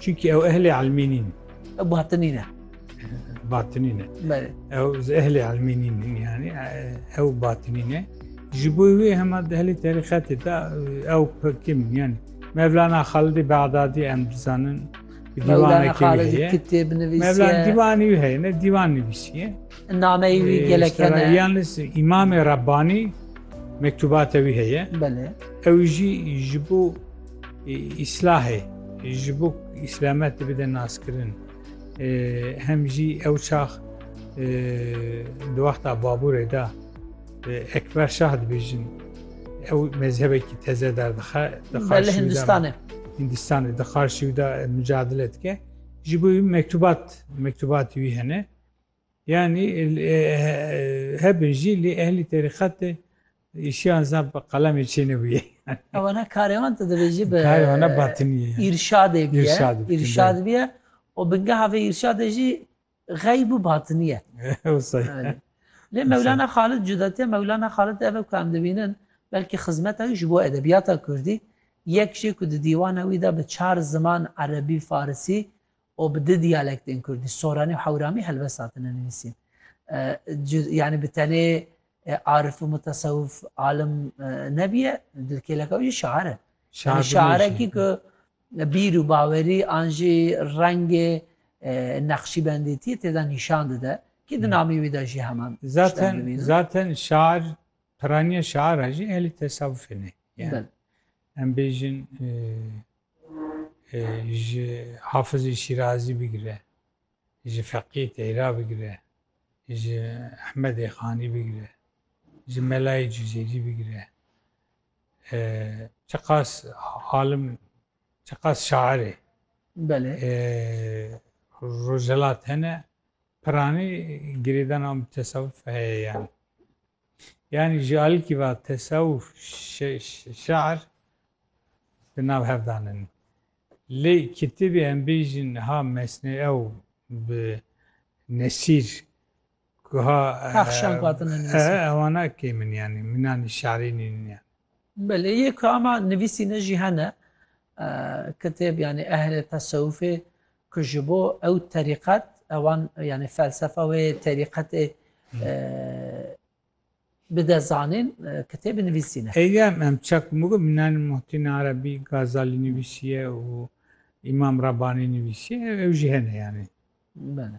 Çunkî ew ehlê elmî nîn. Ew batinî ne. Batinî ne. Belê. Ew ji ehlê elmî nîn yanî ew batinî ne. Ji bo wê hema dehlê terîqetê de ew pikim yanî. Mevlana Xalidî Bexdadî em dizanin Mevlana Xalidî kitêb nivîsiye. Mevlana dîwanî wî heye ne dîwan nivîsiye. Nameyî wî gelek hene. Yalnîz Îmamê Rebbanî mektubatê wî heye. Belê. Ew jî ji bo Îslahê ji bo îslamet bide naskirin hem jî ew çax di wexta baborê de ekber şah dibêjin ew mezhebekî teze derdixe Hindistanê Hindistanê di qarşî de mücadele dike ji bo mektubat mektubatî wî hene Yanî hebê jî lê ehlî terîqetê îşiyan zaf bi qalemê çênebûye. Wana karê wan tu divê jî bi Karê wan ne batinî ye. Îrşadê bûye. Îrşad bikin, Îrşad bûye û bingeha vê îrşadê jî xeyb û batinî ye. Wisa ye. Belê. Lê Mewlana Xalid cudetiya Mewlana Xalid ev e ku em dibînin belkî xizmeta wî ji bo edebiyata Kurdî yek jê ku di dîwana wî de bi çar ziman Erebî, Farisî û bi du diyalektên kurdî, soranî û hewramî helbest hatine nivîsîn. Yanî bi tenê arif û mutesewif alim nebîye, dilkêleka wî jî şair e. Yanî şairekî ku bîr û bawerî an jî rengê neqşîbendîtiyê tê de nîşan dide kî di namî wî de jî heman tiştan dibînin. Zaten şair piraniya şaira jî ehlî tesewufê ne. Em bêjin ji Hafizê Şîrazî bigire, ji Feqiyê Teyra bigire, ji Ehmedê Xanî bigire, ji Melayê Cuzêrî bigire, çiqas alim, çiqas şairê Rojhelat hene, piranî girêdana mutesewif heye yani. Yani ji alîkî ve tesewuf şer di nav hev danin. Lê kitêbê em bêjin ha mesnê ew bi nesîr guha Pexşan katine nivîsî. Ewana kê min yani minanî şerî nînin yani. Belê yê ku ama nivîsîne jî hene kitêb yani ehlê tesewufê Ku ji bo ew terîqet, ewan yanî felsefa wê terîqetê bide zanîn, kitêbê nivîsîne. Heyî em ça ku migom minan Muhitîn Erebî, Gazalî nivîsîye û Îmam Rabanî nivîsîye, ew jî hene yanî. Bele.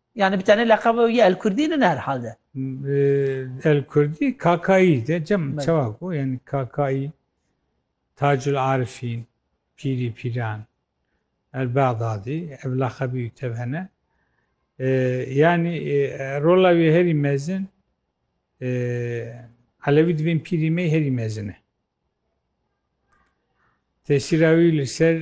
Yani bi tenê leqeba wî Elkurdî nin her hal de. Elkurdî Kakayî de cem çawa ku yani Kakayî Tacul Arifîn pîrî pîran el Bexdadî ev leqebî wî tev hene. Yani rola wî herî mezin Elewî divên pîrî me herî mezin e. Tesîra wî li ser